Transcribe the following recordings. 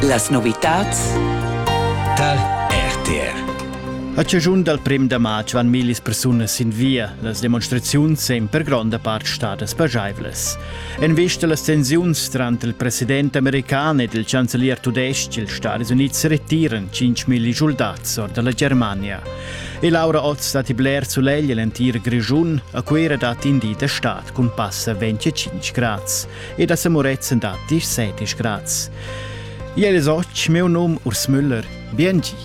Las novitads tar RTR a chaschun dal prem da matg van millis persunas sin via. Las demonstraziuns èn per gronda part stadas pajaivlas. En vista a las tensiuns tranter il president american ed il chancelier tudestg, ils Stati Unids retiran 5.000 schuldats or da la Germania. E Laura Oz datti bler sulegl en l'entir Grischun. A Cuira datti in di da stad cun passa 25 grads. e da Semurezen da 17 grads. Iel es och meu num Urs Müller. Biengi.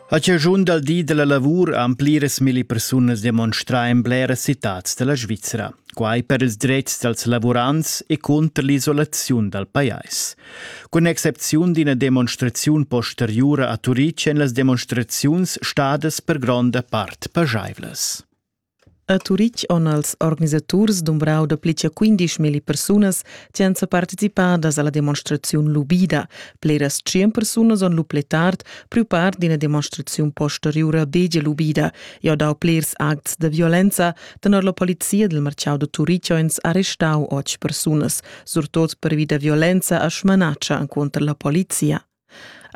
A chaschun dal di della lavur han pliras milli persunas demonstrà in bleras citads della Svizzera, quai per ils dretgs dals lavurants e cunter l'isolaziun dal pajais. Cun excepziun d'ina demonstraziun posteriura a Turitg èn las demonstraziuns stadas per gronda part pajaivlas. A Turitg han els organisaturs dumbrau dapli che 15.000 persunas che han participadas alla demonstraziun lubida. Pleras 100 persunas han lu pli tard priu part d'ina demonstraziun posteriura degia lubida e ha dau plers acts da violenza. Tenor la polizia dil marcau da Turitg han arrestau otg persunas. surtot pervi da violenza a Schmanatscha enconter la polizia.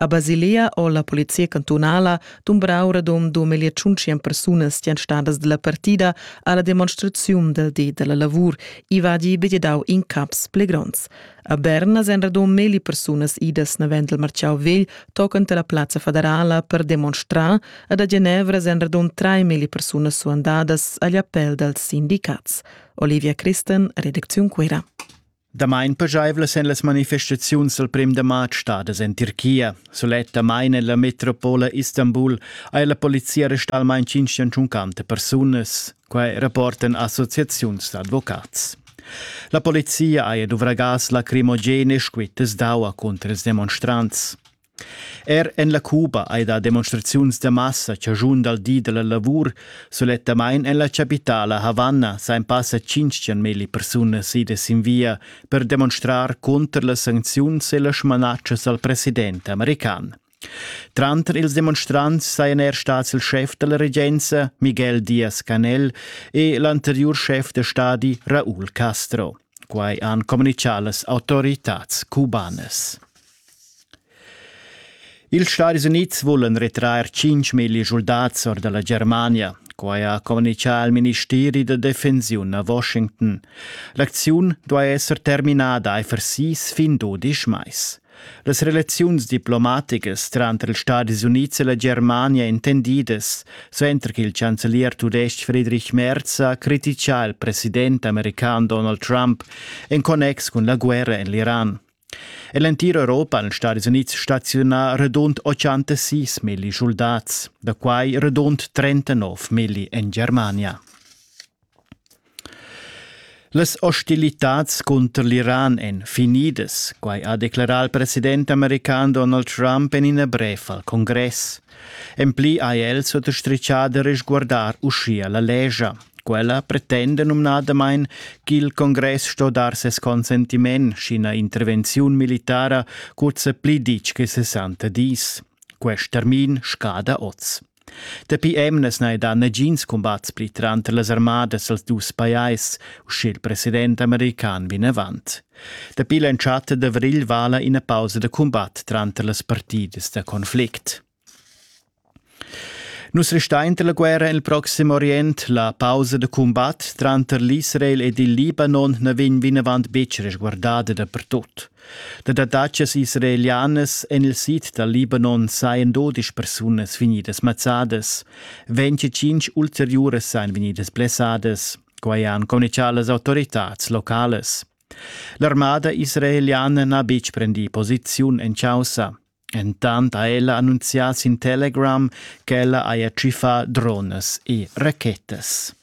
A Basilea o la polizia cantunala dumbrau radom 2500 persunas stan stadas della partida alla demonstraziun del di della lavur i va di begedau in caps pli gronds. A Berna sen radom meli persunas idas navend del marciau vegl tocant la plaza federala per demonstrar ad a Genevra sen radom 3 meli persunas suandadas agli appell dels sindicats. Olivia Christen, redacziun Cuira. Damain pajaivlas èn las manifestaziuns dal prim da martg stadas en Tirchia. Sulettamain en la metropola Istanbul ha la polizia arrestà almain 550 persunas. Quai rapportan associaziuns d'advocats. La polizia ha duvrà gas lacrimogen e squittas d'aua cunter ils demonstrants. Er en la Cuba hai dà demonstraziuns da massa chaschun dal di da la lavur. Sulettamain en la chapitala Havanna sain passa tschintgen milli persunas idas sin via per demonstrar cunter las sancziuns e las smanatschas al president american. Tranter ils demonstrants sajan er stads il schef da la regenza Miguel Diaz-Canel e l'anteriur schef da stadi Raúl Castro. Quai han communichà las autoritads cubanas. Ils Stadis Unids vulan retrair tschintg milli schuldats or da la Germania. Quai ha communitgà il ministeri da defensiun a Washington. L'acziun duai esser terminada aifer sis fin dudisch mais. Las relaziuns diplomaticas tranter ils Stadis Unids e la Germania intendidas, suenter ch'il chancelier tudestg Friedrich Merz ha crititgà il president american Donald Trump en connex cun la guerra en l'Iran. En l'entira Europa han Stadis Unids staziunà radund 86 milli schuldats, da quai radund 39 milli en Germania. Las ostilitads cunter l'Iran èn finidas, quai ha declerà il president american Donald Trump en ina brev al congress. En pli ha el suttastritgà da resguardar uschia la lescha. Quella pretenda numnadamain ch'il congress sto dar ses consentiment sch'ina intervenziun militara curza pli ditg che 60 dis. Quest termin scada oz. Dapi emnas n'hai dà nagins cumbats pli tranter las armadas als dus pajais, uschè il president american vinavant. Dapi l'entschatta d'avrigl vala ina pausa da cumbat tranter las partidas da conflict. Nus restein la guerra en il proxim Orient. La pausa da cumbat tranter l'Israel ed il Libanon na vegn vinavant betg resguardada dapertut. Da dattatschas israelianas en il sid dal Libanon sajan dodisch persunas vegnidas mazzadas. 25 ulteriuras sajan vegnidas blessadas. Quai han communicà las autoritads localas. L'armada israeliana n'ha betg prendì posiziun en chaussa. Entant ha ella annunzià sin Telegram ch'ella haja tschiffà dronas e rachetas.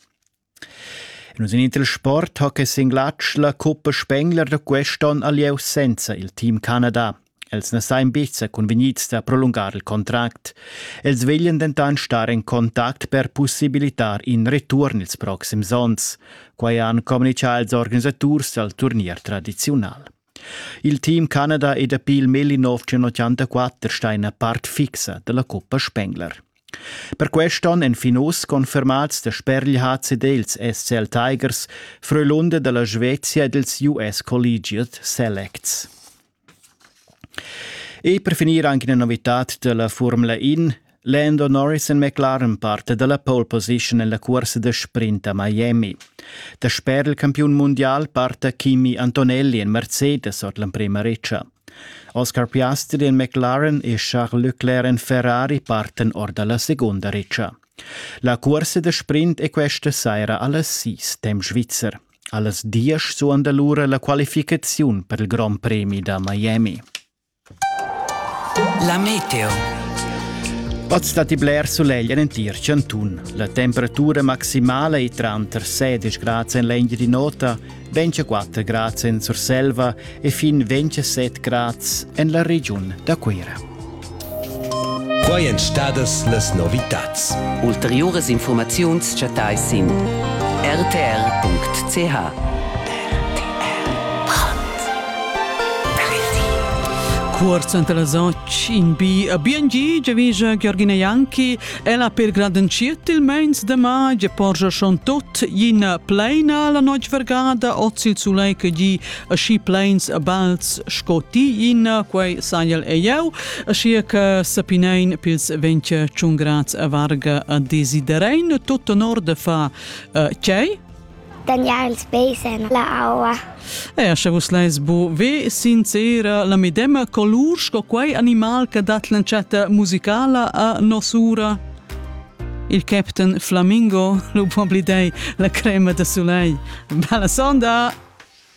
In usinit il sport ha che sin glatsch la coppa Spengler da quest'onn ha lieu senza il team Canada. Els na sajan betg sa cunvegnids da prolungar il contract. Els veglian dentant star en contact per pussibilitar in return ils proxims onns. Quai han communitgà ils organisaturs dal turnier tradiziunal. Il team Canada e dapi il mil 1984 sta ina part fixa dalla coppa Spengler. Per quest'onn èn fin uss confermads da spergl HCD ils SCL Tigers, freulunde dalla Svezia ed ils US Collegiate Selects. E per finir anche una novità della Formula In. Lando Norris en McLaren parte dalla pole position nella corsa de sprint a Miami. Der Sperlcampion mondial parte Kimi Antonelli en Mercedes ord l'emprema reccia. Oscar Piastri en McLaren e Charles Leclerc en Ferrari parten ord dalla seconda reccia. La corsa de sprint è questa saira alla Sis, dem Schweizer. Allas diesch suonda lura la qualificaziun per il Grand Premi da Miami. La meteo. Oz stat i bler sulegl en entir chantun. La temperatura maximala è tranter 16 grads en l'engine di nota, 24 grads en Surselva e fin 27 grads en la regiun da Cuira. Quai èn stadas las novitads. Ulteriuras infurmaziuns chattais sin rtr.ch. Cuort suenter las 8 in bi a BNG giavija Georgina Janki. Ella per gradenschiet il meins de ma ge porgia schon tot ina pleina la noc vergada oz il sulei che gi e schi plains e balts sco ti in, quei saiel e jeu, sia che sapinein pils ventge ciungrats e varga a desiderein tut honor de fa uh, chei, Daniel Spesen, la aua. E sche vus leis bu ve sincera la medema colur sco quei animal che dat l'entschatta musicala a nosura? Il captain Flamingo, lo può blidei, la crema de soleil. Bella sonda!